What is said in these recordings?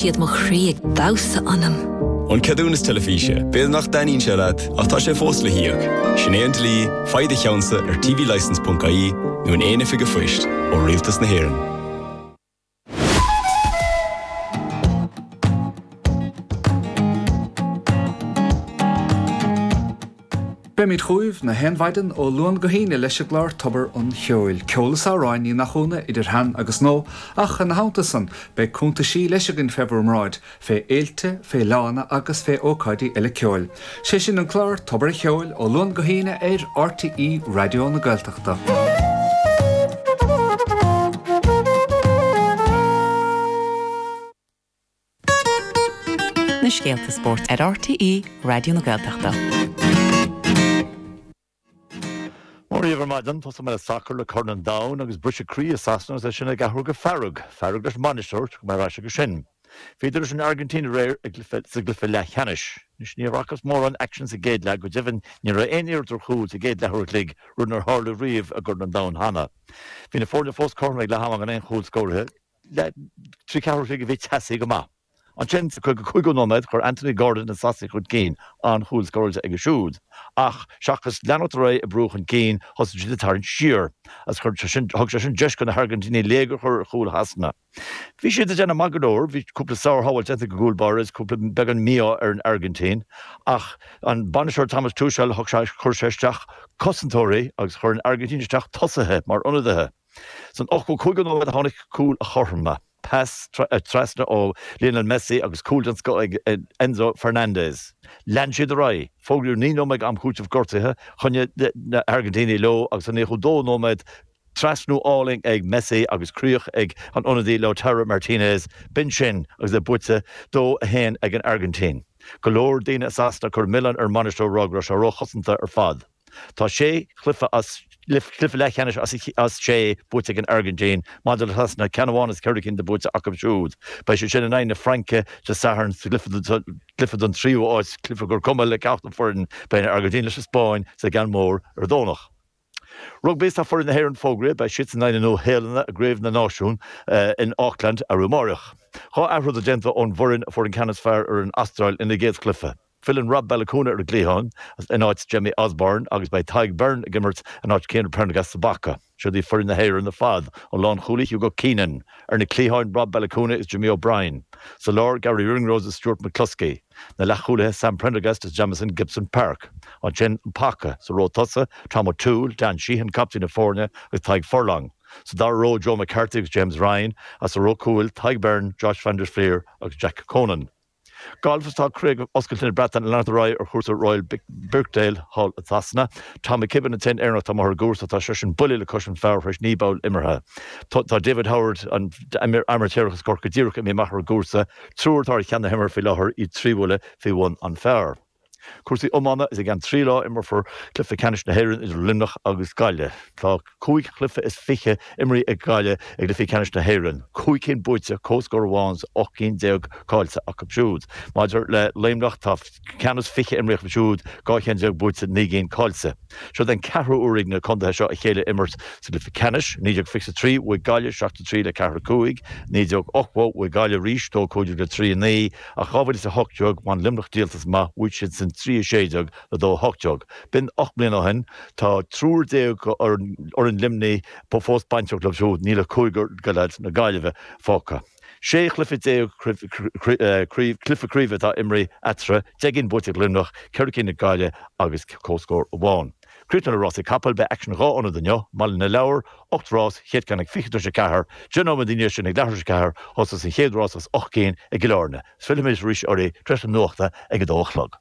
siad mo chroí ag damhsa ionam. An ceadúnas teilifíse, b'fhéidir nach dtaitníonn sé leat ach tá sé fós le híoc. Sin é an dlí, faigh do cheannsa ar tvlicense.ie nó in aon oifig an phoist ó Rialtas na hÉireann. Beimid chugaibh na haon mhaidin ó Luan go hAoine leis an gclár Tobar an Cheoil, ceol is amhráin, ní nach ionadh, idir shean agus nua, ach ina theannta san, beidh cuntaisí leis againn fé bhur mbráid, fé fhéilte, fé fhleadhanna agus fé ócáidí eile ceoil. 'Sé sin an clár Tobar a' Cheoil, ó Luan go hAoine ar RTÉ Raidió na Gaeltachta. na scéalta spóirt ar RTÉ Raidió na Gaeltachta. Mar is iondúil ar maidin, tosóidh mé le sacar le Corn an Domhain agus briseadh croí i Sasana agus é sin ag athrú go fearg, fearg leis an mbainisteoir, tiocfaidh muid ar ais aige sin. Bhíodar leis an Airgintín aréir sa gcluiche leathcheannais. Anois, ní fhacthas mórán aicsin sa gcéad leath, go deimhin ní raibh aon iarracht ar chúl sa gcéad leathuair a chloig, rud nár tharla riamh i gCorn an Domhain cheana. Bhí na foirne fós cothrom ag leath ama gan aon chúl scóraithe. le trí chárta buí a bhí teasaí go maith. Ansin, sa caoga cúigiú nóiméad, chuir Anthony Gordon na Sasaigh chun cinn, an-chúl scóráilte aige siúd. Ach, seachas leanacht ar aghaidh ag brú chun cinn, thosaigh siad ag tarraingt siar, agus chuir sé sin, thug sé sin deis go na hAirgintínigh léigear a chur ar chúl Shasana. Bhí siad ag déanamh maith go leor, bhí cúpla sár-shábháil déanta ag an gcúl báire is cúpla beagán mí-ádh ar an Airgintín, ach an bainisteoir Thomas Tuchel, thug, chuir sé isteach cosantóirí agus chuir an Airgintín isteach tosaithe mar ionadaithe. San ochtó cúigiú nóiméad a tháinig cúl an chothromaithe, pas trasna ó Lionel Messi agus cúl den scoth ag Enzo Fernandez. Lean siad ar aghaidh, fógraíodh naoi nóiméad am cúitimh gortuithe, choinnigh na hAirgintínigh leo agus sa nócha dó nóiméad trasnú álainn ag Messi agus críoch ag an ionadaí Lautaro Martinez. B'in sin agus é buaite, dó a haon ag an Airgintín. Go leor daoine i Sasana ag cur milleán ar an mbainisteoir go raibh sé róchosantach ar fad. Tá sé chluiche as, cluiche leathcheannais as, as sé buaite ag an Airgintín, maidir le Sasana, ceann amháin as ceithre cinn atá buaite acu siúd. Beidh siad sin in aghaidh na Fraince Dé Sathairn sa gcluiche don tríú áit, cluiche gur cuma le ceachtar foireann. Beidh an Airgintín leis an Spáinn sa gceann mór ar an Domhnach. Rugbaí Tá foireann na hÉireann fógraithe, beidh siadsan in aghaidh na Nua-Shéalainne i gCraobh na Náisiún in Auckland arú amáireach. Dhá athrú déag déanta ón bhfoireann a fuair an ceann is fearr ar an Astráil ina gcéad chluiche. Filleann Rob Baloucoune ar an gcliathán in áit Jamie Osborne agus beidh Tadhg Beirne ag imirt in áit Cian Prendergast sa bpaca. Siod í foireann na hÉireann ar fad ón lánchúlaí Hugo Keenan, ar na cliatháin, Rob Baloucoune is Jimmy O'Brien, sa lár, Garry Ringrose is Stuart McCloskey, na leathchúlaithe, Sam Prendergast is Jamison Gibson-Park, ansin an paca, sa ró tosaigh, Tom O'Toole, Dan Sheehan, captaen na foirne, agus Tadhg Furlong, sa dara ró, Joe McCarthy agus James Ryan, agus sa ró cúil, Tadhg Beirne, Josh van der Flier agus Jack Conan. Galf is tá Craobh Oscailte na Breataine ag leanacht ar aghaidh ar chúrsa Royal Birkdale thall i Sasana. Tom McKibbin, an t-aon Éireannach atá amuigh ar an gcúrsa, tá seisean buille le cois an phar tar éis naoi bpoll imeartha. Tá David Howard, an t-amaitéarach as Corcaigh díreach imithe amach ar an gcúrsa, triúr atá ar cheann na himeartha faoi láthair, iad trí bhuille faoi bhun an phar. Cúrsaí Iomána Is i gceann trí lá a imreofar cluiche ceannais na hÉireann idir Luimneach agus Gaillimh. Tá cúig chluiche is fiche imeartha ag Gaillimh i gcluichí ceannais na hÉireann, cúig cinn buaite, comhscór amháin agus ocht gcinn déag caillte acu siúd. Maidir le Luimneach, tá ceann is fiche imeartha acu siúd, dhá cheann déag buaite, naoi gcinn caillte. Seod é an ceathrú huair ag na contaetha seo a chéile a imirt sa gcluiche ceannais. 1923 bhuaigh Gaillimh seacht a trí le ceathair a cúig. 1980 bhuaigh Gaillimh arís, dó a cúig déag le trí a naoi. Ach 2018 bhain Luimneach díoltas amach, bhuaigh siadsan 3 16 le 2 18. B'in ocht mbliana ó shin. Tá triúr déag d'fhoireann Luimnigh fós bainteach leo siúd. Níl ach cúigear de leaids na Gaillimhe fágtha. Sé chluiche déag cluiche craoibhe atá imeartha eatarthu, deich gcinn buaite ag Luimneach, ceithre cinn ag Gaillimh agus comhscór amháin. Críochnú le Rásaí Capall Beidh aicsean dhá ionad inniu, i mBaile na Lobhar, 8 rás, chéad ceann ag 20 tar éis a ceathair. Deich nóiméad i ndiaidh sin ag leathuair tar éis a ceathair, a thosós an chéad rás as ocht gcinn i gCill Áirne. Fillfidh muid arís oraibh tar éis na nuachta ag a dó a chlog.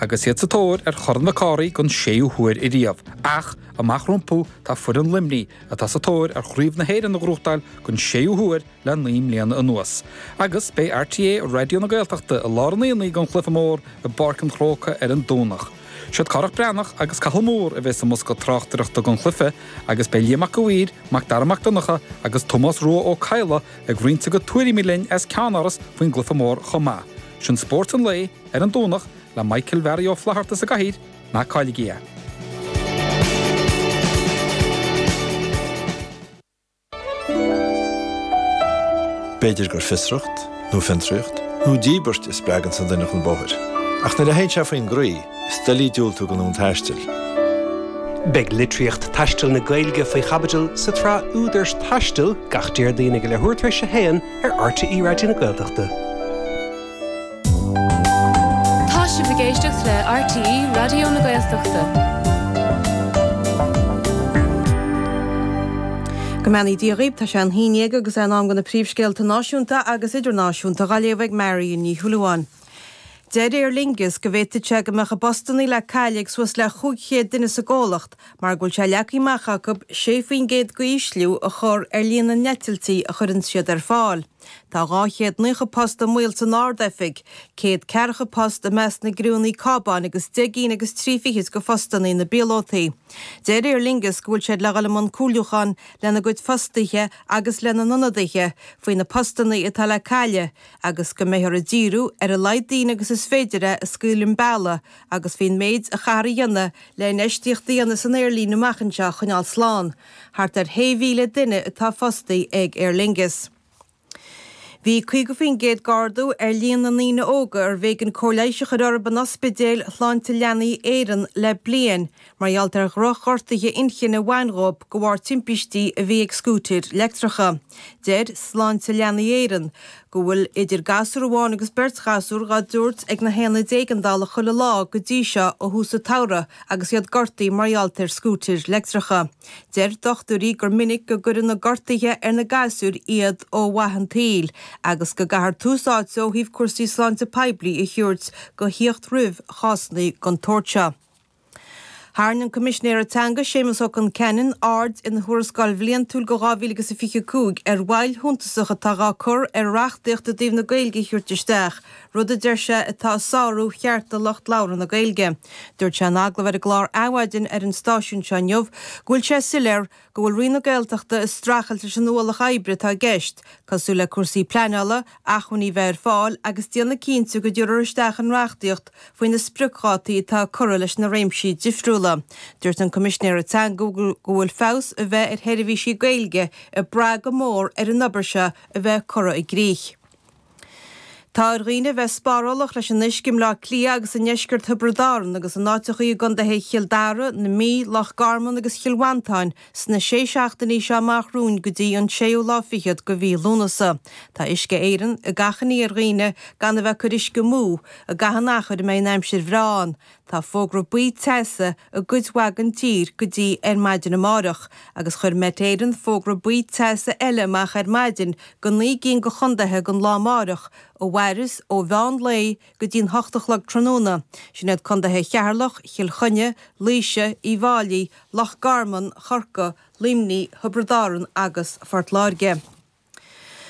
Agus iad sa tóir ar Chorn Mhic Cárthaigh don séú huair ariamh, ach amach rompu tá foireann Luimnigh atá sa tóir ar Chraobh na hÉireann a ghnóthachtáil don séú huair le naoi mbliana anuas. Agus beidh RTÉ Raidió na Gaeltachta i lár an aonaigh don chluiche mór i bPáirc an Chrócaigh ar an Domhnach. Siad Cárthach Breathnach agus Cathal Moore a bheidh sa mbosca tráchtaireachta don chluiche agus beidh Liam Mac a'Mhaoir, Macdara Mac Donncha agus Tomás Rua Ó Cadhla ag roinnt a gcuid tuairimí linn as Ceannáras faoin gcluiche mór chomh maith. Sin Spórt an Lae. Ar an Domhnach, le Michael Mhearaí Ó Flaithearta sa gcathaoir, ná cailligí é. B'fhéidir gur fiosracht, nó fiontraíocht, nó díbirt a spreaganns an duine chun bóthair. Ach nuair a théann sé faoin gcroí, is doiligh diúltú don fhonn taistil. Beidh litríocht taistil na Gaeilge faoi chaibidil sa tsraith Údar Taistil gach Déardaoin ag leathuair tar éis a haon ar RTÉ Raidió na Gaeltachta. Tá sibh ag éisteacht le RTÉ Raidió na Gaeltachta. Go mbeannaí Dia dhaoibh, tá sé a haon déag agus é in am do na príomhscéalta náisiúnta agus idirnáisiúnta dha léamh ag Marion Ní Shúilleabháin. Deir Aer Lingus go bhféadfadh sé go mbeadh a bpostannaí le cailleadh ag suas le 500 duine sa gcomhlacht mar go bhfuil sé leagtha amach acu 6% d'ísliú a chur ar líon na n-eitiltí a chuireanns siad ar fáil. Tá 200 naocha post i mbaol san Ard-Oifig, céad ceathracha post i measc na gcriúnní cábáin agus deich gcinn agus trí fichid go phostannaí na bpíolótaí. Deir Aer Lingus go bhfuil siad le dhul i mbun comhairliúcháin lena gcuid fostaithe agus lena n-ionadaithe faoi na postannaí atá le cailleadh agus go mbeidh orthu díriú ar a laghad daoine agus is féidir a scaoileadh un bealaigh agus faoin méid a chaithfear a dhéanamh le infheistíocht a dhéanamh san aerlíne amach anseo a choinneáil slán. Thart ar shé mhíle duine atá fostaithe ag Aer Lingus. Bhí 50% d'ardú ar líon na ndaoine óga arbh éigean cóir leighis a chur orthu in Ospidéil Shláinte Leanaí Éireann le bliain mar gheall ar dhrochghortuithe inchinne a bhain dhóib go bharr timpistí a bhí ag scútair leictreacha. Deir Sláinte Leanaí Éireann go. go bhfuil idir gasúr amháin agus beirt ghasúr dhá dtabhairt ag na haonaid éigeandála chuile lá go dtí seo ó thús an tsamhraidh agus iad gortaithe mar gheall ar scútair leictreacha. Deir dochtúirí gur minic go gcuireann na gortuithe ar na gasúir iad ó mhaith an tsaoil agus go gcaithfear tús áite ó thaobh cúrsaí sláinte poiblí a thabhairt go thíocht roimh chásanna den tsórt seo. Tharraing an Coimisinéir Teanga, Séamas Ó Concheanainn, aird ina Thuarascáil Bhliantúil go 2025 ar mhoill shuntasach atá dhá cur ar reachtaíocht i dtaobh na Gaeilge a thabhairt isteach, rud a deir sé atá ag sárú chearta lucht labhartha na Gaeilge. Dúirt sé in agallamh ar an gclár Adhmhaidin ar an stáisiún seo inniu go bhfuil sé soiléir go bhfuil Roinn na Gaeltachta ag streachailt leis an ualach oibre atá i gceist, cosúil le cúrsaí pleanála, acmhainní bheith ar fáil agus déanamh cinnte go dtiúrfar isteach an reachtaíocht faoi na spriocdhátaí atá curtha leis na réimsí difriúla. Dúirt an Coimisinéir Teanga go bhfuil feabhas a bheith ar sheirbhísí Gaeilge ag brath go mór ar an obair seo a bheith curtha i gcrích. Tá ar dhaoine a bheith spárálach leis an uisce i mBleá Cliath agus i ndeisceart Thiobraid Árann agus in áiteachaí i gcondaetha Chill Dara, na Mí, Loch Garman agus Chill Mhantáin sna sé seachtainí seo amach romhainn go dtí an séú lá fichead go mhí Lúnasa. Tá Uisce Éireann ag achainí ar dhaoine gan a bheith ag cur uisce amú i gcaitheamh an achair a mbeidh an aimsir bhreá ann. Tá fógra buí teasa i gcuid mhaith den tír go dtí ar maidin amárach agus chuir Met Éireann fógra buí teasa eile amach ar maidin go 9 gcinn de chondaetha don lá amárach a mhaireas ó mheán lae go dtí'n hocht a chlog tráthnóna, sin iad condaetha Cheatharlach, Chill Chainnigh, Laoise, Uíbh Fháilí, Loch Garman, Chorca, Luimní, Thiobraid Árann agus Phort Láirge.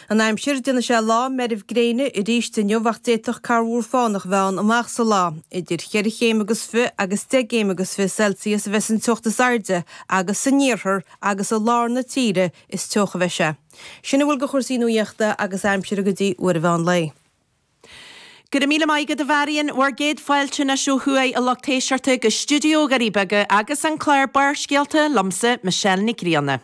An aimsir, Déanfaidh sé lá meirbh gréine arís inniu ach d'fhéadfadh corrmhúr fánach a bheith ann amach sa lá. Idir cheithre chéim agus fiche agus deich gcéim agus fiche Celsius a bheas an teocht is airde agus san oirthear agus i lár na tíre is teocha a bheidh sé. Sin a bhfuil de chúrsaí nuaíochta agus aimsire go dtí uair an mheán lae. Go raibh míle maith agat a Mharion. Bhur gcéad fáilte anois ó thuaidh a lucht éisteachta go stiúideo Dhoirí Beaga agus an clár Barrscéalta liomsa, Michelle Nic Grianna.